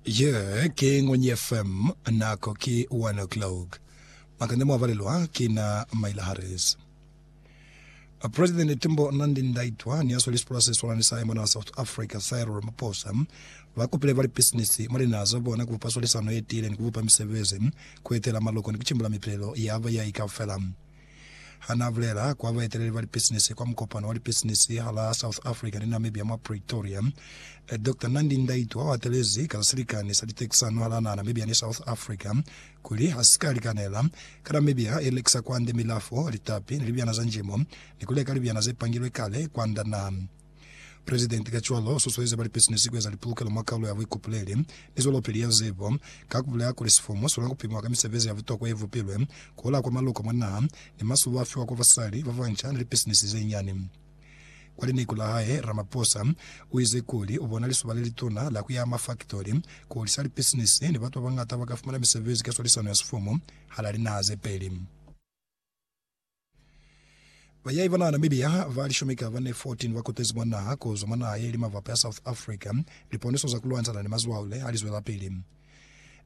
Ye ki Ngwenyi FM, nako ki 1 o'clock. Makande mwa balelwa ki na Myla Harris. President Timbo Nandi Ndaitwa ni asweli sipula se swalani sa mwana wa South Africa Cyril Ramaphosa ba kopile ba lipisinisi mwa linaha za bona ku bupa swalisano ye tiile ni ku bupa misebezi, ku etela maloko ni ku cimbula mipilelo ya bayahi kaufela. Ha n'a bulela kwa baeteleli ba lipisinisi kwa mukopano wa lipisinisi halaa South Africa ni Namibia mwa Pretoria, Doctor Nandi Ndaitwah o atelezi ka za silikani sa litekisano halaa naha Namibia ni South Africa kuli ha si ka likanela ka Namibia e lekisa kwande milafo, litapi ni libyana za njimo ni ku leka libyana ze pangilwe kale kwanda naha. Presidenti kacwalo u susueza ba lipisinisi ku eza lipulukelo mwa Kaulo ya Buikopoleli ni Zwelopili ya Zibo, ka ku bulela kuli sifomo si kona ku pimiwa ka misebezi ya butokwa ye bupilwe ku hola kwa maloko mwa naha, ni masubo a fiwa kwa basali ba banca ni lipisinisi ze nyani. Kwa lineku la hae, Ramaphosa u ize kuli u bona lizuba le lituna la ku yaha mafaktori, ku holisa lipisinisi, ni batu ba bañata ba ka fumana misebezi ka swalisano ya sifomo hala linaha ze peli. Bayahi ba naha Namibia ba lishumi ka bane 14 ba kutezi mwa naha ku zwa mwa naha ye li mavapa ya South Africa liponiso za ku lwantshana ni mazwaule ha li zwelapili.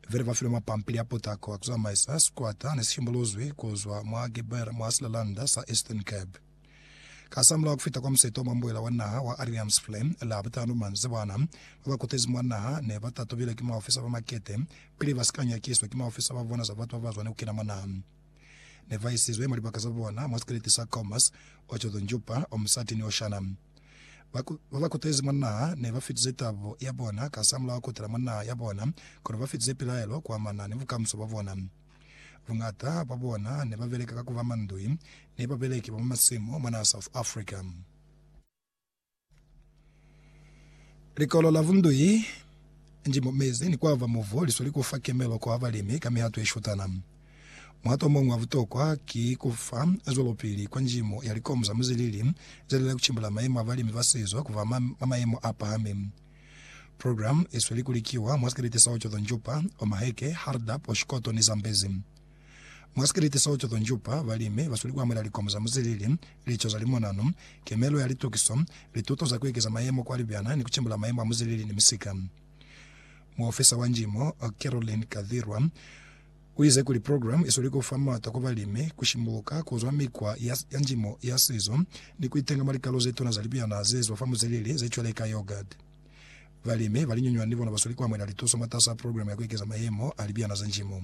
Vele ba filwe mapampili a potako a ku zamaisa sikwata ne si shimbuluzwi ku zwa mwa Geber mwa silalanda sa Eastern Cape. Kasamulaho ku fita kwa musito wa mwa mbuela wa naha wa Ariams Flem la butano manzi bana ba ba kutezi mwa naha ne ba tatubile ki maofisa ba makete pili ba si ka nyakiswa ki maofisa ba bona za batu ba ba zwa ni ku kena mwa naha. ne ba isizwe mwa libaka za bona mwa sikeleti sa Kaumas, Otjozondjupa, Omusati ni Oshana. Ba ba ba kutezi mwa naha ne ba fitize tabo ya bona kasamulaho kutela mwa naha ya bona, kono ba fitize pilaelo kuamana ni bukamuso bwa bona. Buñata bwa bona ne ba beleka ka ku ba mandui ni babeleki ba mwa masimu mwa naha South Africa. Likolo la Vundui nji mo mezi ni kwava muvo liswa li kufa kemelo kwa balimi ka mihato ye shutana. Muhato omuñwi wa butokwa ki ku fa zwelopili kwa njimo ya likomu za muzilili ze lila ku cimbula mayemo a balimi ba sizo ku ba ma mayemo a pahami. Programu ye sweli ku likiwa mwa sikelete sa Ocotonjupa, Omaheke, Hardap, Oshikoto ni Zambezi. Mwa sikiliti seo Choto Njupa, balimi basweli kuamuhela likomo za muzilili, lico za limonano, kemelo ya litokiso, lituto za kuekeza mayemo kwa libyana ni kucimbula mayemo a muzilili ni misika. Muofisa wa Njimo, Caroline Kathirwa, uize kuli program isweli kufa mata kwa balimi kushimbuka kuzwa mikwa ya ya njimo ya sizo ni kuitenga mwa likalo zetuna za libyana zezwa fa muzilili zecweleka yogurt. Balimi balinyunywani ni bona basweli kuamuhela lituso mwatas'a program ya kuekeza mayemo a libyana za njimo.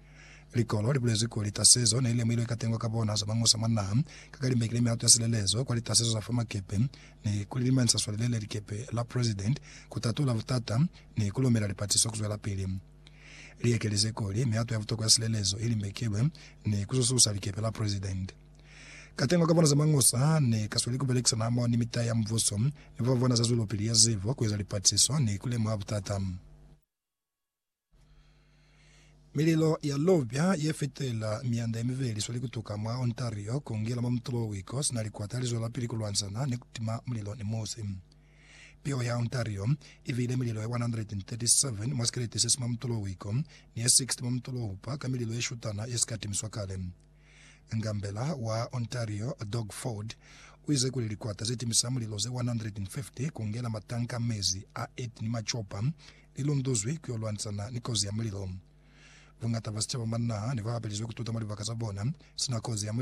Likolo libulezwi kuli tasezo nelilemuhilwe katengo ka bona za mañusa mwa naha, ka kalimbeki le mihato ya silelezo kwa litasezo za fa makepe, ni kulilimanyisa swali lele likepe la President, kutatula butata, ni kulomela lipatiso kuzwelapili. Liekelize kuli mihato ya butokwa ya silelezo ilimbekilwe ni kusususa likepe la President. Katengo ka bona za mañusa ne kasweli kubelekisana hamoho ni mitahe ya mubuso ni bafabona za zwelopili ya zibo, kueza lipatiso, ni kulemuha butata. Mililo ya lubya ye fetela mianda ye mibeli sweli kutuka mwa Ontario ku ngela mwa mutulo wa wiko sina likwata li zwelapili ku lwanzana ni ku tima mulilo ni musi. Piho ya Ontario i bile mililo ye 137 mwa sikeleti se si mwa mutulo wa wiko ni ye 60 mwa mutulo wa hupa ka mililo ye shutana ye si ka timiswa kale. Ngambela wa Ontario, Doug Ford, u ize kuli likwata ze timisa mulilo ze 150 ku ngela matanka a mezi a 8 ni macopa li lunduzwi ku yo lwanisana ni kozi ya mulilo. Buñata bwa sicaba mwa naha ne bwa hapelizwe ku tuta mwa libaka za bona sina kozi ya mulilo.